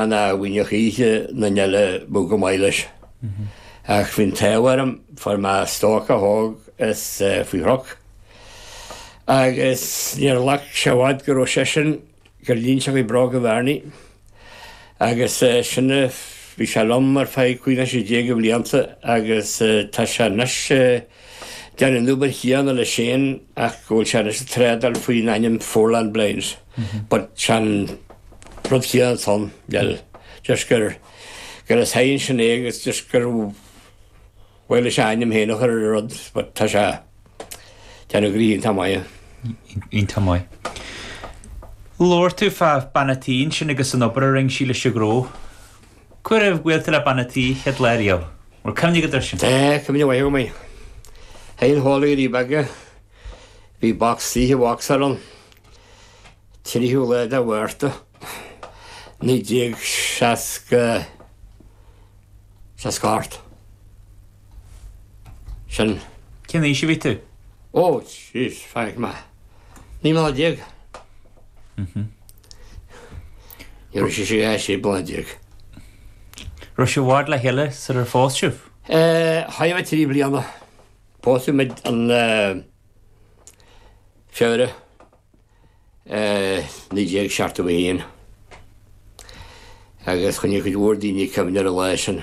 an aduainneach oíche na n-eala budh go maith leis. Ach bhí an t-ádh orm fuair mé stócach óg as Faoi Chnoc, agus níor ghlac sé i bhfad go rabh seisean ag gabháil isteach i mbróga Bharney, agus sin bhí sé liom ar feadh cúig nó sé déag de bhlianta, agus tá sé anois. Déanamh an obair chéanna leis féin ach go bhfuil sé anois ag trádáil faoin ainm Foreland Blinds but is é an rud céanna atá ann, bhuel, just gur, gur leis féin anois é agus just go bhfuil a ainm féin aige ar an rud but tá sé déanamh go iontach maith. Iontach maith. Labhair tú fá bhean an tí ansin agus an obair a rinne sí leis an ghnó. Cá huair a bhuail tú le bean an tí an chéad lá riamh. Bhfuil cuimhne agat air sin? Tá cuimhne mhaith agam air. Seanhalla Dhoirí Beaga. Bhí bac saoithe Vauxhall ann. An tríú lá de Mhárta 1968. Sin. Cén aois a bhí tú? Ó, jeez, bhfeicfidh mé. Naoi mbliana déag. Ní raibh sise ach sé bliana déag. Raibh sibh i bhfad le chéile sular phós sibh? Chaith muid trí bliana. Pósadh muid an Feabhra 1971 agus choinnigh cuid mhór daoine cuimhne ar an lá sin.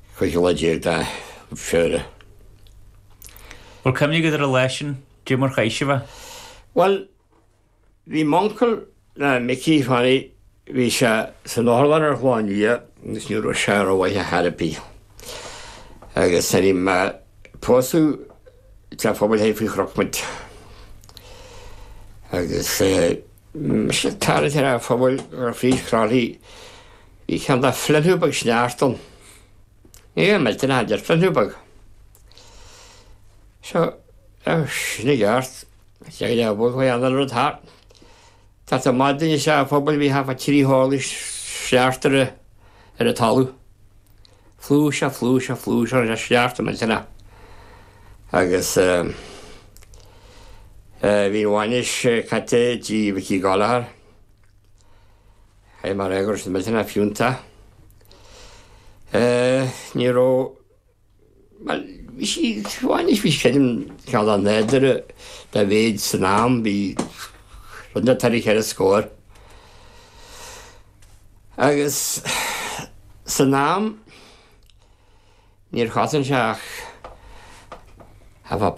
Cúigiú lá déag de Feabhra. Bhfuil cuimhne agat ar an lá sin, caidé mar chaith sibh é? Bhuel, bhí m'uncail, Micí Fanny, bhí sé san otharlann ar an Chlochán Liath agus ní raibh sé rómhaith ar chor ar bith. Agus nuair a bhí mé pósadh, i dteach pobail féin Faoi Chnoc muid. Agus Ag tarraingt ar theach an phobail ar dhroichead Chroithlí bhí cineál de fliuchadh beag sneachta ann. Ní raibh mé tinn deir fliuchadh beag. Seo é sin i gceart. Téigh le bhog faoi anáil rud thart. Teacht amach dúinn as teach an phobail bhí thart fá trí horlaí sneachta ar an talamh. flúirse, flúirse, flúirse sneachta millteanach agus bhí an bhainis caite i dtigh Mhicí Gallagher. Chaith mar fhéagair na tine fiúnta. Ní raibh Bhuel, bhí sí, bainis, bhí sí creidim ceann an láidirí dá mhéid san am, bhí rud beag thaire cheithre scór. Agus san am, níor chosain sé ach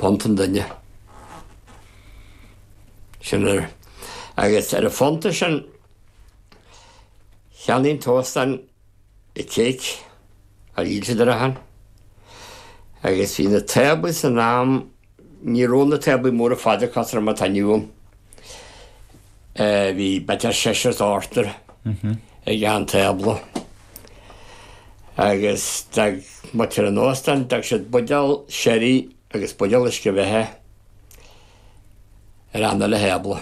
punta an duine. Sin ar, agus ar an phunta sin, cheannaigh an t-óstán istigh, ar, i Leitir Ceanainn, agus bhí na táblaí san am, ní raibh na táblaí móra fada cothroma atá inniu ann, bhí b'fhéidir seisear nó ochtar ag achan tábla. Agus d'fhág muid ar an óstán, d'fhág siad buidéal sherry agus buidéal uisce beatha ar achan uile thábla.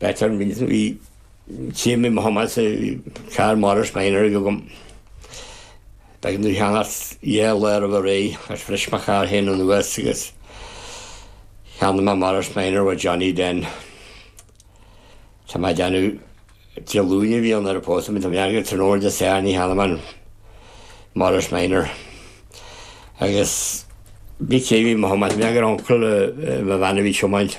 Better an bhfilltear í. Tchím i mo thumadh sa charr Morris van dhearg agam. Beidh an dúsheangart dhe a lorg a ré agus bhris mo charr féin anuas agus cheannaigh mé Morris van ó Johnny Den. Tá mé ag déanamh Dé Luain a bhí ann ar a pósadh mé. Tá mé airgid san ór Dé Sathairn a cheannaigh mé Morris van. Agus b'fhios a'm bhí mo thumadh. Tá mé ag déanamh uncail do mo bhean a bhí ag tiomáint.